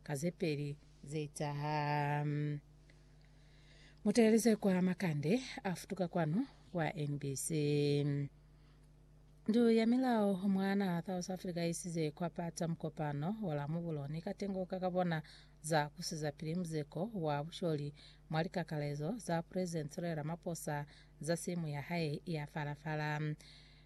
Ka ze peli ze etaha, mu teeleze kwa makande a futuka kwanu kwa NBC. Ndu ya milao mwa naha South Africa i isize kwa pata mukopano wa Lamubulo ni katengo ka ka bona za ku sizapili muzeko wa busholi mwa likakalezo za President Cyril Ramaphosa za simu ya hae ya fala-fala.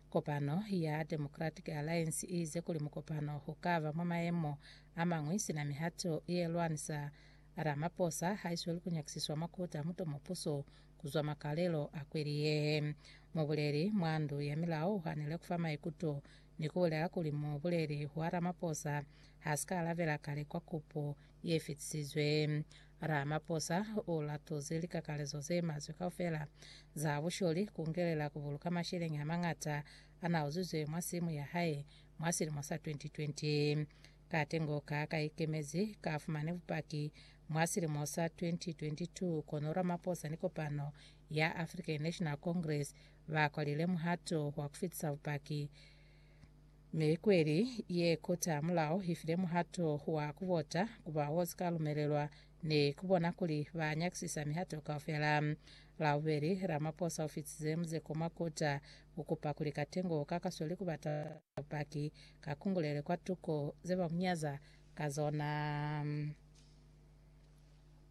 Kopano ya Democratic Alliance i ize kuli mukopano u ka ba mwa mayemo a mañwi sina mihato ye lwanisa Ramaphosa ha i sweli ku nyakisiswa mwa Koti a Muto mo puso ku zwa makalelo a kweli ye. Mubuleli mwa ndu ya milao u hanile ku fa maikuto ni ku bulela kuli mubuleli wa Ramaphosa ha si ka alabela kale kwa kupo ye fetisizwe. Ramaphosa u latuzi likakalezo ze maswe kaufela za busholi kungelela ku buluka masheleñi a mañata a na uzizwe mwa simu ya hae mwa silimo sa 2020. Katengo ka ka ikemezi ka fumane bupaki mwa silimo sa 2022 kono Ramaphosa ni kopano ya African National Congress ba kwalile muhato wa ku fitisa bupaki Mi kweli ye kota mulao ifile muhato wa kuvota ku ba wo sika lumelelwa ni kubona kuli ba nyakisisa mihato kaufela. Labubeli, Ramaphosa ufitize muzeko mwa kota ukupa kuli katengo ka kasweli kubata bupaki ka kungulele kwa tuko ze ba munyaza ka zona.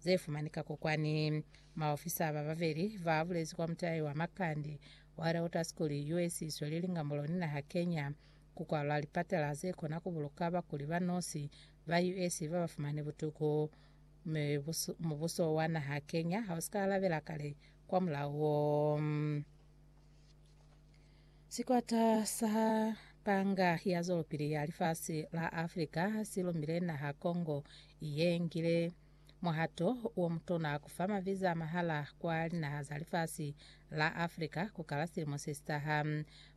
ze fumanika kokwani. Maofisa ba babeli ba bulezi kwa mutai wa Makande wa Reuter School US isweli lingambulo ni naha Kenya ku kwalwa lipatela ze kona ku buluka bakuli ba nosi ba US ba ba fumani butuku. Mubuso wa naha Kenya ha u si ka alabela kale kwa mulao wo. Sikwata sa panga ya zwelopili ya lifasi la Afrika si lumile naha Congo ye ngile muhato wo mutona ku fa maviza a mahala kwa linaha za lifasi la Afrika ku kala silimo se si taha.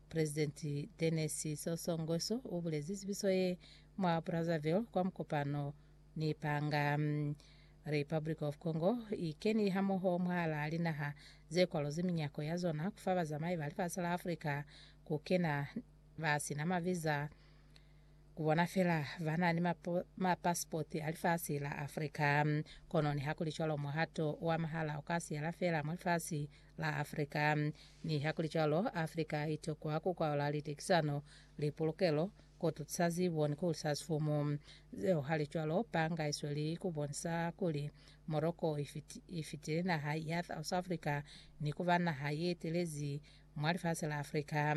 Presidenti Denis Sassou Nguesso u bulezi zibiso ye mwa Brazzaville kwa mukopano Ni panga. Republic of Congo i keni hamoho mwahalaa linaha ze kwalozi minyako ya zona ku fa bazamai ba lifasi la Africa ku kena ba si na maviza, ku bona fela ba na ni mapasipoti a lifasi la Africa. Kono nihakulicwalo, muhato wa mahala u ka siyela fela mwa lifasi la Africa. Nihakulicwalo, Africa i tokwa ku kwaola litekisano, lipulukelo, Ku tusa ziboni ku sa sumu zeo halicwalo, panga i sweli ku bonisa kuli Morocco i fitile naha ya South Africa ni ku ba naha ye telezi mwa lifasi la Africa.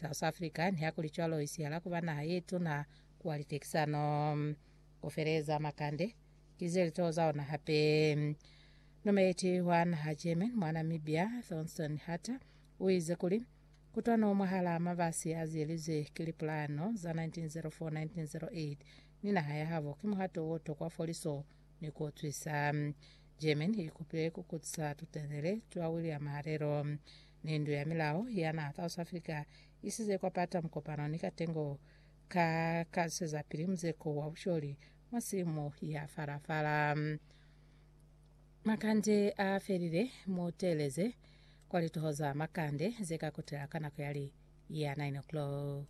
South Africa nihakulicwalo i sihala ku ba naha ye tuna kwa litekisano. Ku feleza makande, ki ze litoho za ona hape. Numeleti wa naha German mwa Namibia, Thorsten Harter, u ize kuli, Kutwano mwahalaa mabasi a ziyelizwe ki lipulano za 1904-1908 ni naha yahabo ki muhato o tokwa foliso ni ku utwisa. Germany i kupile ku kutisa tutelele twa William Halelo ni ndu ya milao ya naha South Africa i size kwa pata mukopano ni katengo ka ka zwisezapili muzeko wa busholi mwa simu ya fala-fala. Makande a felile, Mu teeleze kwa lituho za makande ze ka kutela ka nako ya li ya 9 o'clock.